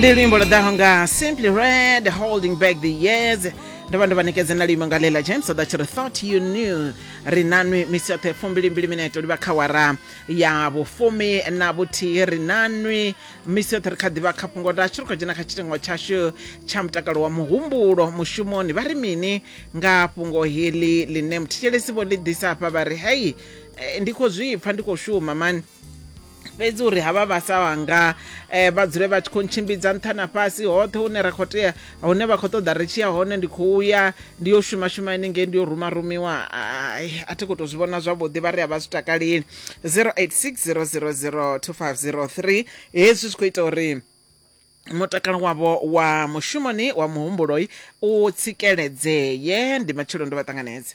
ndi luimbo lwo ḓaho nga simply red holding back the years ndo vha ndo vha nekedza na luimbo nga lela james so that you thought you knew ri nanwi misi yoṱhe fumbilimbili mineto livha kha wara ya vhufumi na vhuthihi ri nanwi misi yoṱhe ri kha ḓivha kha fhungo lashu ri khou dzhena kha tshitengo tshashu tsha mutakalo wa muhumbulo mushumoni vha ri mini nga fhungo heḽi ḽine muthetshelesi vho ḽi ḓisa hafha vha ri hei eh, ndi khou zwi pfa ndi khou shuma mani fhedzi uri havha vha sa wanga eh, vha dzule vha tshi khou ntshimbidza nṱha na fhasi hoṱhe hune ra khou tea hune vha khou ṱoḓa ri tshi ya hone ndi khou ya ndi yo shuma shuma inengei ndi yo ruma rumiwa ai a thi khou tou zwi vhona zwavhuḓi vha ri a vha zwi takaleli 0860002503 hezwi zwi khou ita uri mutakalo wavho wa mushumoni wa muhumbuloi u tsikeledzee ndi matshelo ndo vha ṱanganedza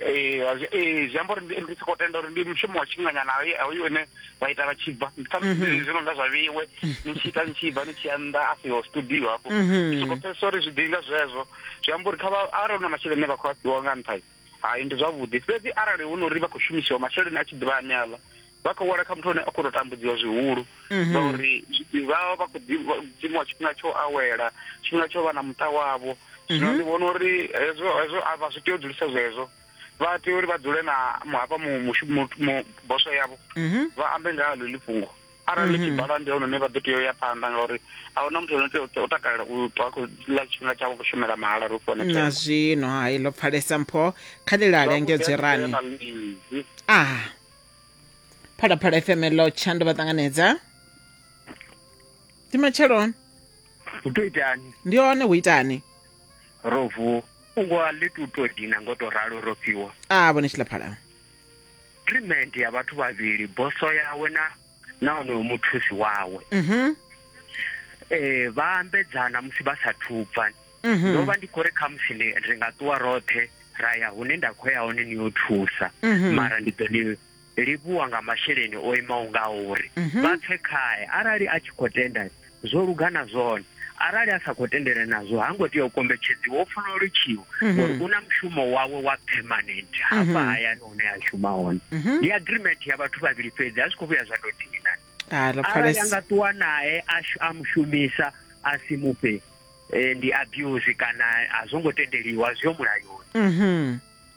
ee ee zwi amba uri ndi soko tenda uri ndi mushumo wa tshifhinganyana hoyu une vha ita vha tshi bva ndi kha mhm. zwi no nga zwa vheiwe ni tshi ita ni tshi bva ni tshi ya nnḓa a siho studio hafho mhm. soko pfesesa uri zwi ḓinga zwezwo zwi amba uri kha vha arali hu na masheleni vha khou a fhiwa nga nṱha hai ndi zwavhuḓi fhedzi arali hu no uri vha khou shumisiwa masheleni a tshi ḓivha ane aḽa vha khou wela kha muthu ane a khou tou tambudziwa zwihulu mhm. ngauri vha vha vha khou dzimiwa tshifhinga tsho awela tshifhinga tsho vha na muṱa wavho zwino mhm. ndi vhona uri hezwo hezwo a vha zwi tea u dzulisa zwezwo vha tea uri vha dzule na hafha boso yavho mhm. vha ambe nga ha ḽeḽi fhungo arali tshi bala ndi hone vha ḓo tea u ya phanḓa ngauri a huna muthu ono tea u takalela u ṱwa khou ḽa tshifhinga tshavho khou shumela mahala ri fone na zwino hai ḽo pfalesa mpho kha ḽi lale engedzwe rani aha phalaphala fm lo tshando vha ṱanganedza ndi matsheloni u to itani ndi hone hu itani ro vuwa ungwa ḽi tu to dina ngo to ralo ro fhiwa a vhone tshilaphala treatment ya vhathu vhavhili boso yawe na na onoyo muthusi wawe um vha ambedzana musi vha sa thubva mhm. ndo vha ndi khou ri khamusi ri nga ṱuwa roṱhe ra ya hune nda khou ya hone ni yo thusa mhm. mara ndi ḓo ni livhuwa nga masheleni o imaho nga uri vha pfe khae arali a tshi khou tenda zwo luga na zwone arali a sa khou tendele nazwo ha ngo tea u kombetshedziwa o funa u litshiwa mhm. ngori u na mushumo wawe wa permanent hafha mhm. hayani hune a shuma hone mhm. ndi agreement ya vhathu vhavhili fhedzi a zwi khou vhuya zwa tou dina ah, arali a nga ṱuwa nae a mushumisa a si mufhe eh, ndi abuse kana a zwo ngo tendeliwa zwi yo mulayoni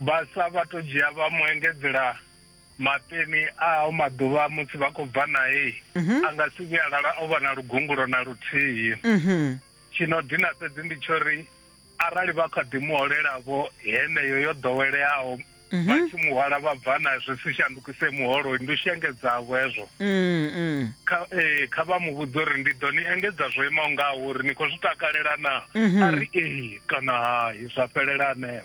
Vhaswa vha to dzhia vha mu engedzela mapeni a o maḓuvha musi vha khou bva nae mhm. a nga si vhuya a lala o vha na lugungulo na luthihi mhm. tshino dina fhedzi ndi tsho ri arali vha kha ḓi muholelavho heneyo yo ḓoweleaho mhm. vha tshi muhwala vha bva na zwi si shandukise muholo ndi u shengedzavho hezwo ee kha vha mu vhudza uri ndi ḓo ni engedza zwo imaho ngaho uri ni khou zwi takalela na a ri ee kana hai zwa fhelela aneo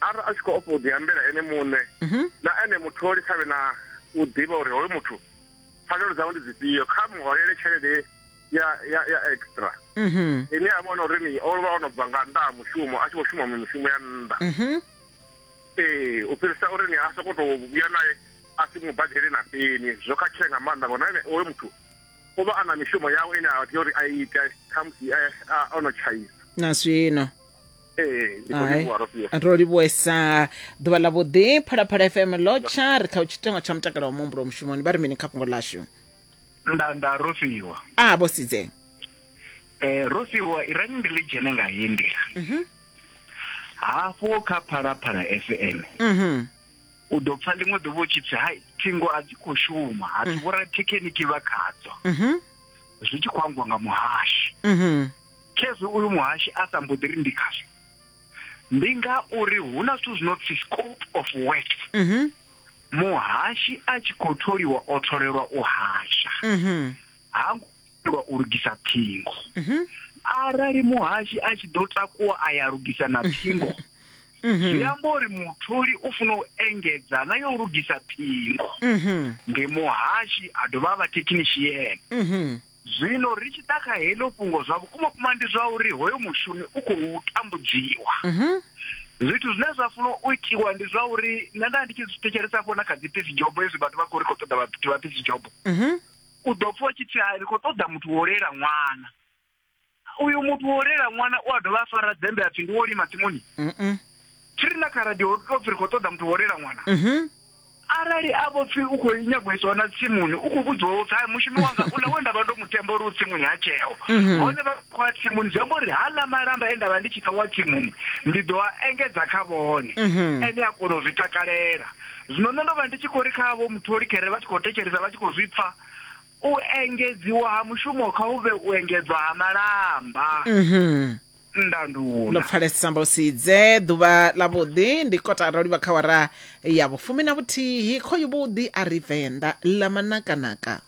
arali a tshi khou ofha u ḓiambela ene muṋe mhm. na ene mutholi kha vhe na u ḓivha uri hoyo muthu pfanelo dzawe ndi dzifhio kha muholele tshelede ya ya ya extra mhm. ine a vhona uri ni o vha o no bva nga nnḓa ha mushumo a tshi khou shuma mishumo ya nnḓa mhm. ee u fhirisa uri ni a sokou tou vhuya naye a si mu badele na peni zwo khakhea nga maanḓa ngona ene oyo muthu u vha a na mishumo yawe ine a tea uri a ite khamusi o no tshaisa na zwino ro livhuesa ḓuvha ḽa vhuḓi phalaphala fm lotsha ri kha tshitengo tsha mutakalo wa muhumbulo mushumoni vha ri mini kha fhungo lashu nda nda ro fhiwa a vho sidze eh ro fhiwa i rani ndi ḽi dzhene nga heyi nḓila mhm. hafho kha phalaphala fm mhm. u ḓo pfa ḽiṅwe ḓuvha u tshi pfi hai thingo a dzi khou shuma ha dzi mm. vhorathekheniki vha khadzo mhm. zwi tshi khou angwa nga muhashi khezwi uyu muhashi a sa mboḓi ri ndi khazwo ndi nga uri hu na zwithu zwino pfi scope of work mhm muhashi a tshi khou tholiwa o tholelwa u hasha mhm ha ngo tholelwa u lugisa ṱhingo mhm arali muhashi a tshi ḓo takuwa a ya lugisa na ṱhingo mhm zwi amba uri mutholi u funa u engedza na yo u lugisa ṱhingo mhm ndi muhashi a dovha a vha thekhinishiene mhm Zwino ri tshi ḓa kha heḽo fhungo, zwa vhukumavhukuma ndi zwa uri hoyo mushumi u khou tambudziwa. Zwithu zwine zwa funa u itiwa ndi zwa uri nṋe nda ndi tshi zwi thetshelesa hafho na kha dzi peace job hezwi vhathu vha khou ri khou ṱoḓa vhathu vha peace job. U ḓo pfha u tshi pfhi hai ri khou ṱoḓa muthu wo lela ṅwana. uyu muthu wo rela ṅwana u a dovha a fara dzembe a pfi ndi wo lima tsimuni Mm-mm. tshi ri na kha radio ri to pfi ri khou ṱoḓa muthu wo rela ṅwana Mhm. arali a vho pfi u khou nyago isiwa na tsimuni u khou vhudziwa upfi hai mushumi wanga u na we nda vha ndo mu themba uri u tsimuni ha tsheo hone vha khou a tsimuni zwi amba uri ha ḽa malamba e nda vha ndi tshi ṱawa tsimuni ndi ḓo a engedza kha vhone ene a kona u zwi takalela zwino nṋe ndo vha ndi tshi khou ri kha vho mutholi khere vha tshi khou thetshelesa vha tshi khou zwi pfa U engedziwa ha mushumo kha hu vhe u engedzwa ha malamba. Ndanduna. Ḽo pfalesa amba u si dze. Ḓuvha ḽavhuḓi ndi kotara u livha kha wara ya vhufumi na vhuthihi. Khoyu vhuḓi a ri Venḓa ḽa manakanaka.